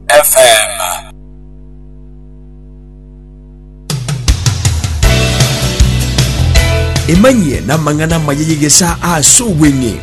FM. Emanyie n'amang'ana amaya y'egesaa ase obweng'e.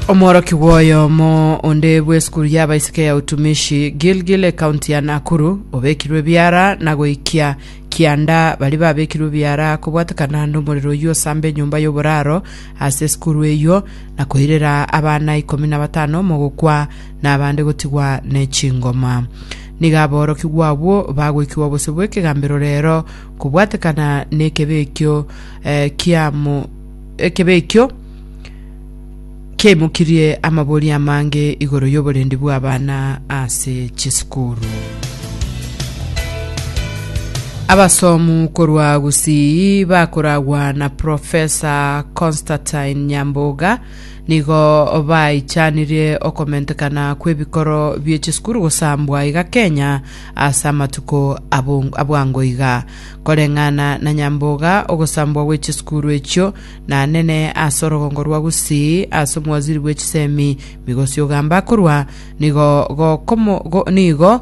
omworokigwa oyomo onde bw'esukuru y'abaiseke ya utumishi gilgil ekaunti ya nakuru obekirwe ebiara na goikia kianda baria babekirwe ebiara kobwatekana nomorero oyio osamba enyomba y'oboraro ase esukuru eyio, na koirera abana ikomi na batano mogokwa, na abande gotigwa ne chingoma. Nigo aborokigwa abwo bagoikigwa bosio bw'ekegambero reero, kobwatekana n'ekebe ekio eh, kiamo ekebe ekio Kiaimokirie amabori amange igoro y'oborendi bw'abana ase chisukuru. Abasomu korwa Gusii bakoragwa na Profesa Constantine Nyamboga nigo baichanirie okomentekana kw'ebikoro bie chisukuru gosambwa iga Kenya ase amatuko abwango iga. Koreng'ana na Nyamboga, ogosambwa gwe chisukuru echio Nanene ase orogongo rwa Gusii, ase omwaziri bwe chisemi, migosi ogamba akorwa, nigo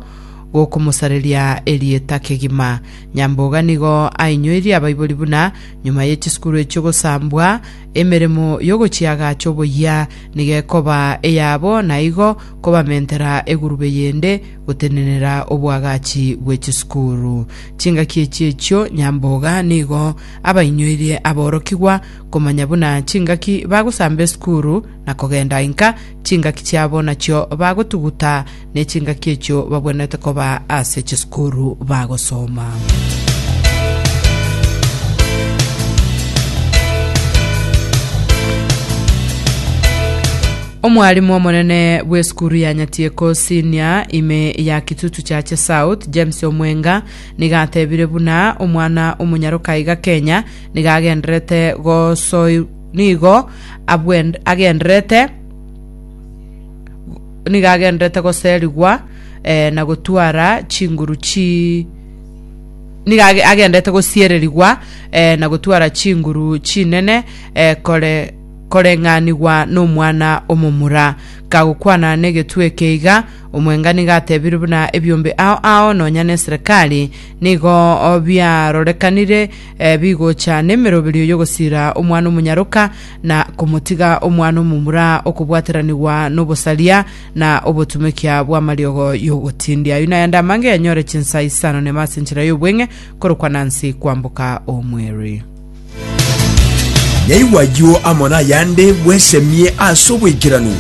gokomosareria erieta kegima. Nyamboga nigo ainyoirie abaibori buna nyuma ye chisukuru echio gosambwa, emeremo y'ogochia agacha oboyia nigo ekoba eyabo, na igo kobamentera egurube yende gotenenera obwagachi bwe chisukuru. Chingaki echi echio Nyamboga nigo abainyoirie aborokigwa komanya buna chingaki bagosamba esukuru na kogenda inka, chingaki chiabo nachio bagotuguta, ne chingaki echio babwenerete koba ase chisukuru bagosoma. Omwalimu omonene bw'esukuru ya Nyatieko Senior ime ya Kitutu Chache South, James Omwenga, Nigo atebire buna omwana omonyaroka iga kenya, nigo agendererete gosoi nigo abwend agendererete nigo agendererete goserigwa eh, na gotwara chinguru chi nigo age- agendererete gosiererigwa eh, na gotwara chinguru chinene eh, kore koreng'anigwa nomwana omomura kagokwana negetwe eke iga Omwenga nigo atebire buna ebiombe ao ao nonya neserekari nigo biarorekanire bigocha nemeroberio y'ogosira Omwana-o-monyaroka, na komotiga Omwana-o-momura okobwateranigwa nobosaria na obotumekia bw'amariogo y'ogotindia. Ayio nayande amange yanyore chinsa isano nema ase enchera y'obweng'e korokwa Nancy kwamboka omweri. Naigwa ayio amo nayande bwesemie ase oboikeranu.